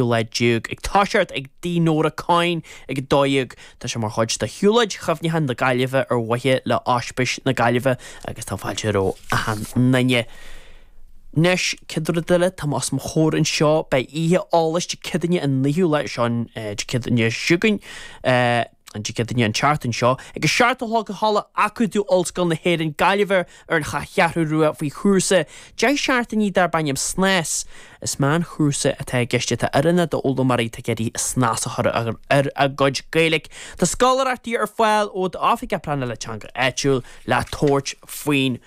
ú lá déag ag toiseacht ag tigh Nóra Coyne ag 12. Tá sé mar chuid de Shiúlóid Chuimhneacháin na Gaillimhe ar mhaithe le Ospís na Gaillimhe agus tá fáilte roimh achan nduine. Anois, céad rud eile, atá agam os mo chomhair anseo, beidh oíche eolais Dé Céadaoine an 9ú lá, seo an Dé Céadaoine seo chugainn. An Dé Céadaoine an tseachtain seo ag a seacht a chlog i Halla Acadamh Ollscoil na hÉireann, Gaillimh ar an Cheathrú Rua faoi chúrsa deich seachtainí darb ainm snas. Is meánchúrsa atá i gceist atá oiriúnach d'fhoghlaimeoirí atá ag iarraidh snas a chur ar a gcuid Gaeilge. Tá scoláireachtaí ar fáil ó d'Oifig Pleanála Teanga Áitiúil le tabhairt faoin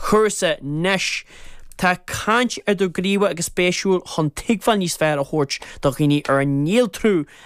chúrsa. Anois tá caint idirghníomhach agus spéisiúil chun tuigbheáil níos fearr a thabhairt do dhaoine ar an néaltrú a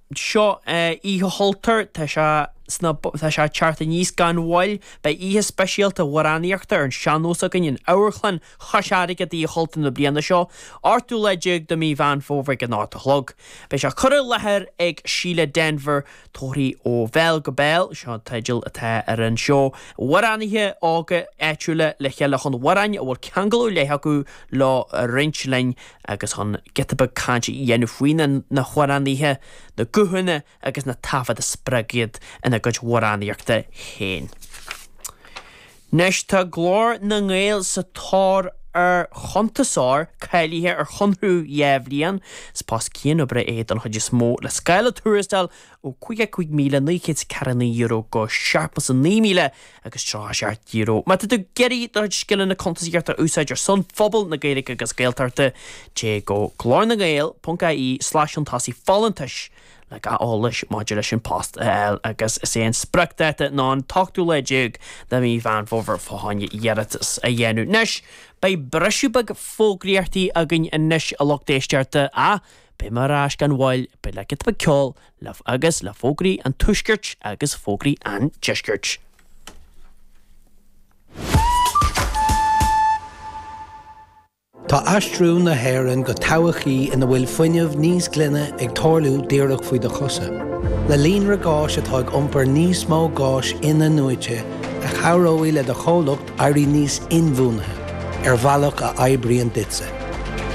seo Oíche Chultúir, tá sé sna, tá sé ag teacht aníos gan mhoill. Beidh oíche speisialta amhránaíochta ar an sean-nós againn in Amharclann Chois Fharraige d'Oíche Chultúir na bliana seo, 18ú lá de Mí Mheán Fómhair ag a 8 a chlog. Beidh sé curtha i láthair ag Síle Denvir, Tóraí ó Bhéal go Béal, seo an teideal atá ar an seó. Amhránaithe óga áitiúla le chéile chun amhráin a bhfuil ceangal ar leith acu leo a roinnt linn. agus chun giota beag cainte a dhéanamh faoi na hamhránaithe, na guthanna agus na taifead a spreag iad ina gcuid amhránaíochta féin. Anois tá Glór na nGael sa tóir ar chuntasóir cáilithe ar chonradh dhá bhliain. Is post cianoibre é don chuid is mó, le scála tuarastail ó €55,949 go €79,037. Má tá tú ag iarraidh do chuid scileanna cuntasaíochta a úsáid ar son phobal na Gaeilge agus Gaeltachta, téigh go glórnagael.ie/iontasaigh folúntais le gach eolais maidir leis an bpost a fháil agus is é an spriocdháta ná an 18ú lá de Mhí Mheán Fómhair fá choinne iarratas a dhéanamh. Anois, beidh briseadh beag fógraíochtaí againn anois a lucht éisteachta ach Beidh mé ar ais gan mhoill, beidh le giota ceoil agus le fógraí an tuaiscirt agus fógraí an deiscirt. Tá aistriú na hÉireann go todhchaí ina bhfuil fuinneamh níos glaine ag tarlú díreach faoi do chosa. Le líonra gáis atá ag iompar níos mó gáis in-athnuaite, a chabhróidh le do chomhlacht Éirí níos inbhuanaithe ar bhealach a oibríonn duitse.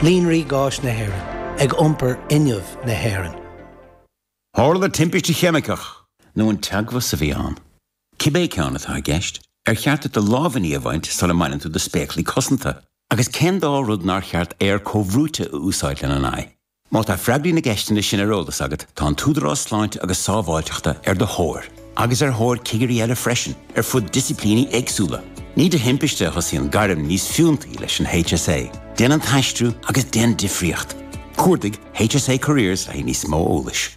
Líonraí Gáis na hÉireann, ag iompar fhuinneamh na hÉireann. Tharla timpiste cheimiceach. nó an teagmhas a bhí ann. Cibé ceann atá i gceist, ar cheart duit do lámhainní a bhaint sula mbaineann tú do spéaclaí cosanta? Agus cén dá rud nár cheart aer comhbhrúite a úsáid lena n-aghaidh? Má tá freagraí na gceisteanna sin ar eolas agat, tá an tÚdarás Sláinte agus Sábháilteachta ar do thóir, agus ar thóir cigirí eile freisin, ar fud disciplíní éagsúla. Ní de thimpiste a thosaíonn gairm níos fiúntaí leis an HSA. Déan an t-aistriú agus déan difríocht! Cuardaigh HSA Careers le haghaidh níos mó eolais.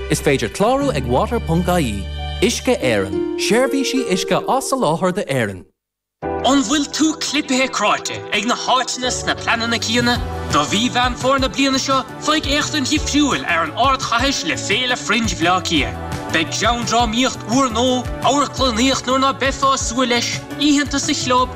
Is féidir clárú ag water.ie. Uisce Éireann, seirbhísí uisce á soláthar d'Éirinn. An bhfuil tú clipithe cráite ag na háiteanna is na pleananna céanna? Do mhí Mheán Fómhair na bliana seo, faigh féachaint dhifriúil ar an ardchathair le Féile Fringe Bhleá Cliath. Beidh greanndrámaíocht úrnua, amharclannaíocht nuair ná beifeá ag súil leis, oícheanta sa chlub,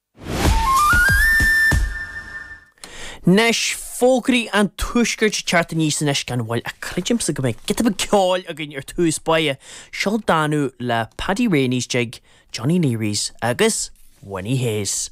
Anois, fógraí an tuaiscirt ag teacht aníos anois gan mhoill, ach creidim go mbeidh giota beag ceoil againn ar dtús báire. Seo Danú le Paddy Reaney's Jig, Johnny Leary's agus Winnie Hayes.